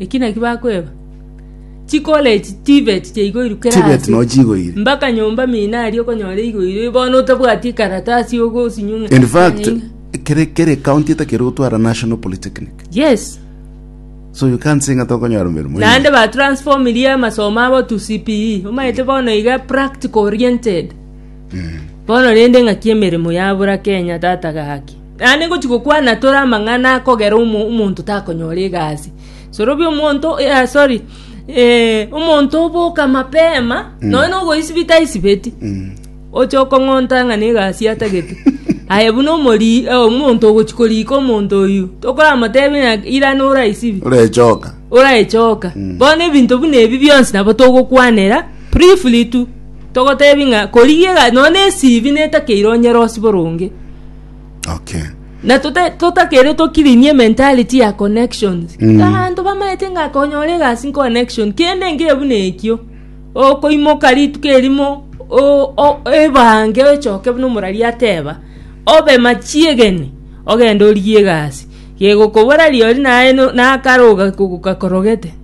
Eki naki bakweba, Chikora echi chibeti chaigoirukera Chibeti ase. no chigoire. Mbaka nyomba mina aria okonyora igoirwe bono otabwati ekaratasi ogosinyung'a. In fact, Nyanyinga. kere kere county etakere gotwara National Polytechnic. Yes. So you can't say ng'a tokonyora emeremo. Naende ba transform ria amasomo abo to CPE. Omaete bono iga practical oriented. Bono rende ng'aki emeremo yabura Kenya tata gaki. Naende ngochia gokwana tore amang'ana akogera omonto takonyora egasi. Sorobia omonto eh, sorry eh, omonto oboka mapema nonya nogoisibi taisibeti oche okong'onta ng'a negasi atagete aye buna omori eh, omonto ogochia korika omonto oyu tokoramotebia ng'a irane oraisibi orechoka oraechoka bono ebinto buna ebi bionsi nabo togokwanera briefly tu Togotebi ng'a korigia iga nonya na esibi netakeire onyare osibore onge. Okay. Na tota- totakeire tokirinie mentality ya connections. Mm. Abanto bamaete ng'a konyora egasi connection kende nge buna ekio. Okoimoka rituko erimo o- o- ebange ochoke buna omorari ateba obe machiegeni ogende origie egasi. Gegokobora riori naye no- nakaroga kogoka korogete.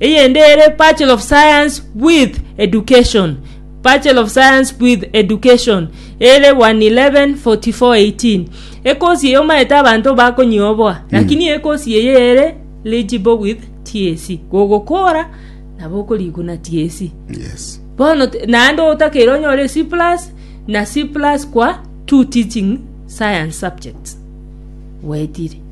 Eyende ere Bachelor of Science with Education, Bachelor of Science with Education, ere 1114418. Ekosi eye omaete abanto bakonyioboa, lakini ekosi eye ere legible with TSC. Gogokora nabo okoriguna TSC. Yes. Bono t- naende otakeire onyore C plus na C plus kwa two teaching science subjects. Gwetire.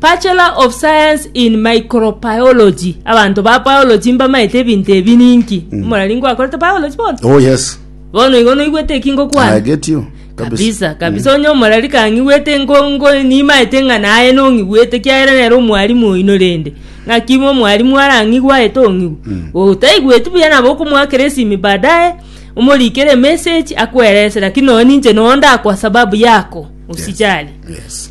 Bachelor of Science in Microbiology. Abanto ba biology mbamaete ebinto ebi ninki. Omorari ngwakorete biology bono. oh yes Bono igo noigwete eki ngokwana. agetio kabisa kabisa kabisa onye omorari kang'igwete ngo- ngo- nimaete ng'a naye nong'igwete kiagera nere omwalimu oino rende ng'aki bo omwalimu arang'igwe aete ong'igwe otaigweti buya nabo okomoakera esimi baadaye omorikere emessage akwerese lakini nonya ninche nonya ndakwa sababu yako usijali yes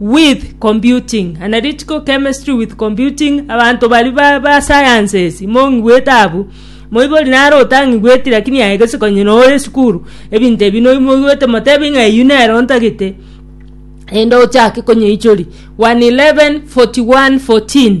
with computing, analytical chemistry with computing, abanto bari ba, ba sciences mong'igwete abu moibori nare otang'igweti lakini aye gese konye nore esukuru ebinto ebi noi moigwete motebi ng'a eyio nere ontagete ende ochake konyeichori 111 41 14